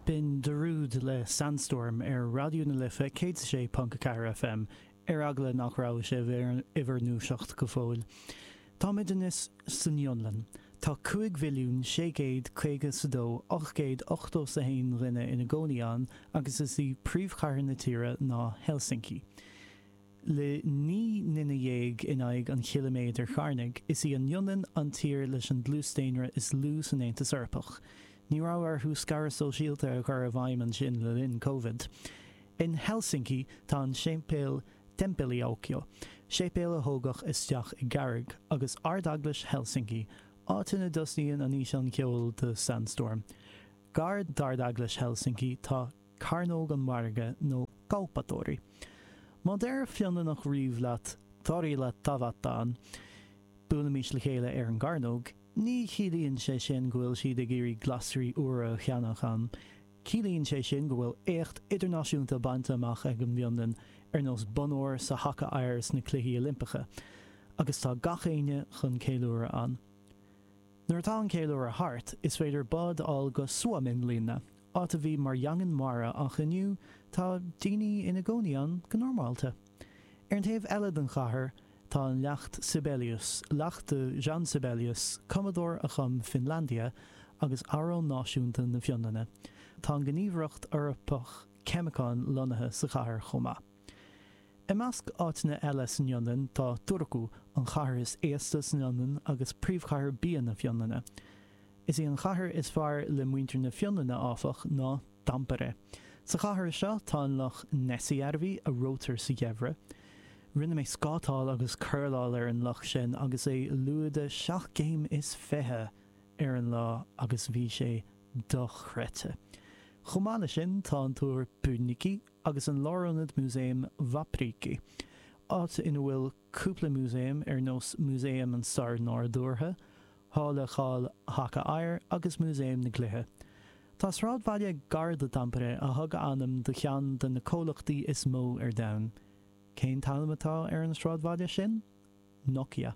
B'in Darude le Sandstorm ar Raidió na Life 106.4 FM, ar eagla nach raibh sibh in bhur ndúiseacht go fóill. Táimid anois san Fhionlainn. Tá 5,652,881 dhuine ina gcónaí ann agus is í príomhchathair na tíre ná Helsinki. Le naoi nduine dhéag in aghaidh an chiliméadair charnaigh, is í an Fhionlainn an tír leis an dlús daonra is lú san Aontas Eorpach. Ní raibh orthu scaradh sóisialta a chur i bhfeidhm ansin le linn Covid. In Helsinki, tá an séipéal Temppeliaukio, séipéal a thógadh isteach i gcarraig, agus Ard-Eaglais Helsinki, áit ina dtosnaíonn an físeán ceoil do Sandstorm. Gar d'Ard-Eaglais Helsinki, tá Cearnóg an Mhargaidh nó Kauppatori. Má deir Fionlannach riamh leat torilla tavataan, buailimis le chéile ar an gcearnóg, ní chiallaíonn sé sin go bhfuil siad ag iarraidh glasraí úra a cheannach ann, ciallaíonn sé sin go bhfuil éacht idirnáisiúnta bainte amach ag an bhFionlainn ar nós bonn óir sa haca oighir sna Cluichí Oilimpeacha, agus tá gach éinne chun ceiliúradh ann. Nuair atá an ceiliúradh thart, is féidir bád a fháil go Suomenlinna, Áit a bhí mar dhaingean mara ach inniu tá daoine ina gcónaí ann go normálta. Ar an taobh eile den chathair tá an Leacht Sibelius, leacht do Jean Sibelius, cumadóir a chum Finlandia agus amhrán náisiúnta na Fionlainne. Tá an Gníomhaireacht Eorpach Ceimiceán lonnaithe sa chathair chomh maith. I measc áiteanna eile san Fhionlainn tá Turku, an chathair is aosta san Fhionlainn agus príomhchathair bia na Fionlainne. Is í an chathair is fearr le muintir na Fionlainne, áfach, ná Tampere. Sa chathair seo tá an loch Näsijärvi, a reoitear sa gheimhreadh. Rinne mé scátáil agus curláil ar an loch sin agus é lúide seacht gcéim is fiche ar an lá agus bhí sé dochreidte. Chomh maith leis sin tá an túr Pyynikin, agus an lárionad músaeim Vapriikki, áit ina bhfuil cúpla músaem ar nós Músaem an Stair Nádúrtha, Halla Cháil Haca Oighir agus Músaem na gCluiche. Tá sráidbhaile gar do Tampere a thug a ainm do cheann de na comhlachtaí is mó ar domhan. Cén t-ainm atá ar an sráidbhaile sin? Nokia.